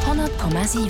100,7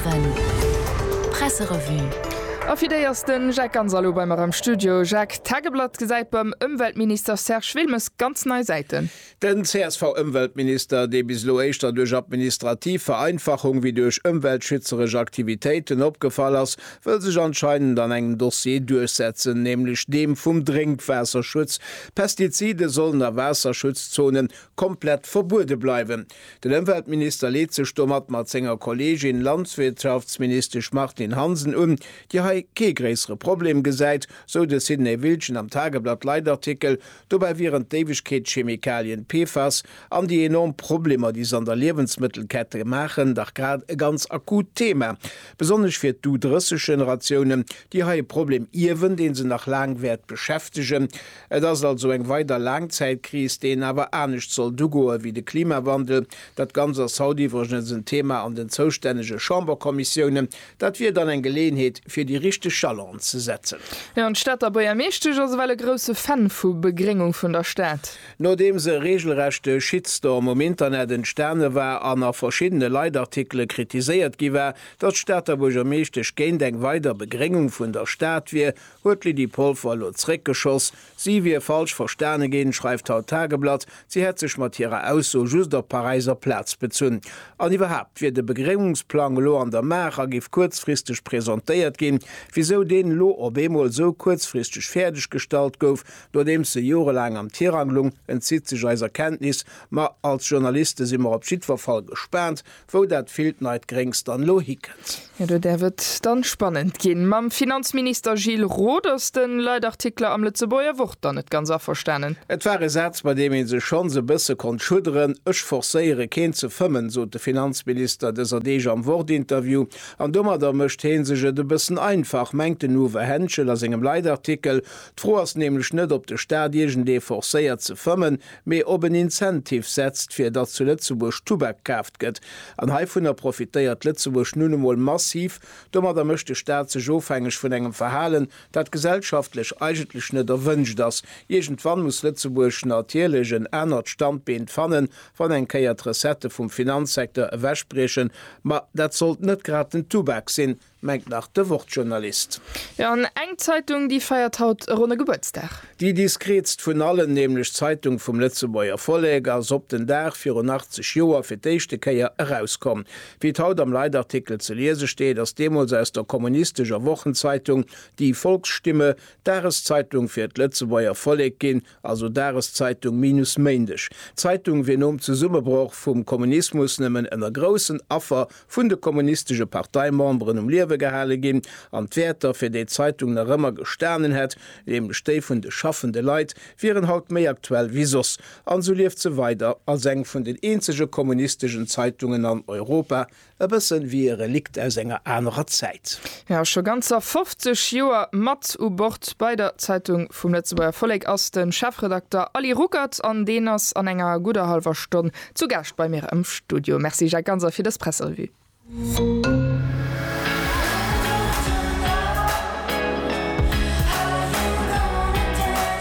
Presserevue A fir déi ass den Jacques Ganz alo bei mer am Studio. Jacques, D'Tageblatt gesäit beim Ëmweltminister Serge Wilmes ganz nei Säiten. Den CSV-Ëmweltminister, dee bis elo éischter duerch administrativ Vereinfachung wéi duerch ëmweltschützeresch Aktivitéiten opgefall ass, wëll sech anscheinend an engem Dossier duerchsetzen, nämlech deem vum Drénkwaasserschutz. Pestizide sollen a Waasserschutzzonen komplett verbuede bleiwen. Den Ëmweltminister leet sech domat mat senger Kolleegin, Landwirtschaftsministesch Martine Hansen un, déi hei kee gréissere Problem gesäit, sou de Sidney Wiltgen am Tageblatt Leitartikel. Dobäi wieren d'Éiwegkeetschemikalien PFAS an déi enorm Problemer, déi se an der Liewensmëttelkette maachen, dach grad e ganz akut Thema, besonnesch fir d'U-30-Generatiounen, déi hei e Problem ierwen, dee se nach laang wäert beschäftegen. Et ass also eng weider Laangzäitkris, déi een awer anescht sollt ugoe wéi de Klimawandel. Dat Ganzt ass haut iwwregens en Thema an den zoustännege Chamberkommissiounen. Dat wier dann eng Geleeënheet, fir déi richteg Jalongen ze setzen. Jo, an d'Stater Buergermeeschtesch ass ewell e grousse Fan vu Begréngung vun der Stad. Nodeems e reegelrechte Shitstorm um Internet entstane war an a verschiddene Leitartikele kritiséiert gi war, datt d'Stater Buergermeeschtesch géint eng weider Begréngung vun der Stad wier, huet d'Lydie Polfer elo zréckgeschoss. Si wier falsch verstane ginn, schreift haut d'Tageblatt. Si hätt sech mat hirer Ausso just op d'Paräiser Plaz bezunn. An iwwerhaapt wier de Begréngungsplang elo an der Maach a géif kuerzfristeg presentéiert ginn. Wisou deen elo op eemol esou kuerzfristeg fäerdeg gestallt gouf, nodeems e jorelaang am Tirang lung, entzitt sech eiser Kenntnis. Ma als Journaliste si mer op jiddwer Fall gespaant, Wou dat villt neit Gréngs dann elo hikënnt? Jo, do däerf et dann spannend ginn. Mam Finanzminister Gilles Roth ass de Leitartikler am Lëtzebuerger Wort dann net ganz averstanen. Et war e Saz, bei deem ee sech schonns e bësse konnt schudderen. Ech forcéiere keen ze fëmmen, sot de Finanzminister dëser Deeg am Wort-Interview. An domadder mécht hee sech et e bëssen einfach, mengt den Uwe Henschel a sengem Leitartikel. D'Fro ass nämlech net, ob de Staat iergendee forcéiert ze fëmmen. mee op en Incentive setzt, fir datt zu Lëtzebuerg Tubak kaaft gëtt. An heivunner profitéiert Lëtzebuerg nun emol massiv. Domadder mécht de Staat sech ofhängeg vun engem Verhalen, dat gesellschaftlech eigentlech net erwënscht ass. Iergendwann muss Lëtzebuerg natierlech en anert Standbeent fannen, wann eng Kéier d'Recettë vum Finanzsecteur ewechbriechen. Ma dat sollt net grad den Tubak sinn. mengt nach de Wort-Journalist. Jo, an eng Zeitung, déi feiert haut e ronne Gebuertsdag. Déi diskreetst vun allen, nämlech d'Zeitung vum Lëtzebuerger Vollek, ass op den Dag virun 80 Joer fir d'éischte Kéier erauskomm. Wéi et haut am Leitartikel ze liese steet, ass deemools aus der kommunistescher Wochenzeitung Die Volksstimme d'Dageszeitung fir d'Lëtzebuerger Vollek ginn, also Dageszeitung minus Méindeg. D'Zeitung wier nom Zesummebroch vum Kommunismus nëmmen ënner groussen Affer vun de kommunistesche Parteimemberen um Liewe gehale ginn an d'Wäerter, fir déi d'Zeitung nach ëmmer gestanen hätt, nämlech déi vun de schaffende Leit, wieren haut méi aktuell wéi soss. An esou lieft se weider als eng vun den eenzege kommunisteschen Zeitungen an Europa. E bëssen wéi e Relikt aus enger anerer Zäit. Jo, scho ganzer 50 Joer mat u Bord bei der Zeitung vum Lëtzebuerger Vollek ass de Chefredakter Aly Ruckert an deen ass an enger gudder hallwer Stonn zu Gaascht bei mir am Studio. Merci Jacques Ganser fir dës Presserevue.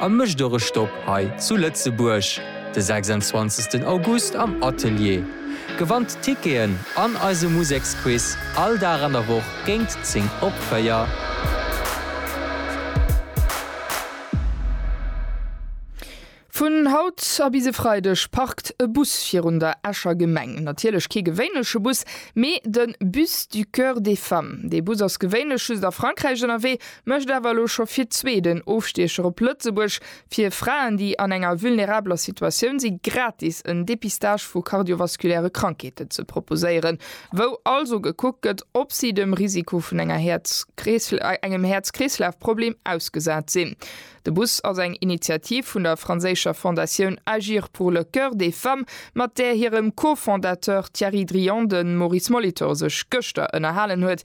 A mécht och e Stopp hei zu Lëtzebuerg de 26 August am Atelier. Gewannt Ticketen an eise Museksquiz all Dag an der Woch géint 10 op 4. Vun haut a bis e Freideg parkt e Bus virun der Escher Gemeng. Natierlech kee gewéinleche Bus, mee de Bus du Coeur des Femmes. Dee Bus ass gewéinlech just a Frankräich ënnerwee, Mécht awer elo scho fir zwee den Ofstiecher op Lëtzebuerg. Fir Fraen, déi an enger vulnerabeler Situatioun si gratis en Depistage vu kardiovaskuläre Krankheeten ze proposéieren, wou also gekuckt gëtt, ob si dem Risiko vun enger Häerz engem Häerz-Kreeslaf-Problem ausgesat sinn. De Bus ass eng Initiativ vun der franséischer Fondatioun Agir pour le cœur des femmes, mat där hirem Co-Fondateur Thierry Drian de Maurice Molitor sech gëschter ënnerhalen huet.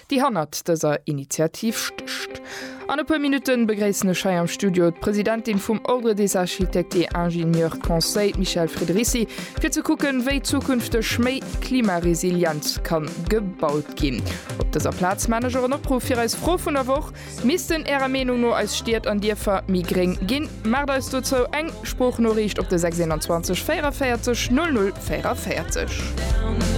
déi hannert dëser Initiativ stécht. An e puer Minutten begréissen ech hei am Studio d'Presidentin vum Ordre des Architectes et Ingénieurs Conseil, d'Michèle Frederici, fir ze kucken, wéi zukünfteg méi klimaresilient ka gebaut ginn. Op dëser Plaz maan ech och en Opruff fir eis Fro vun der Woch, Missten Ärer Meenung no eis Stied an Dierfer méi gréng ginn? Maacht eis dozou eng Sproochnoriicht op de 621 44 00 44.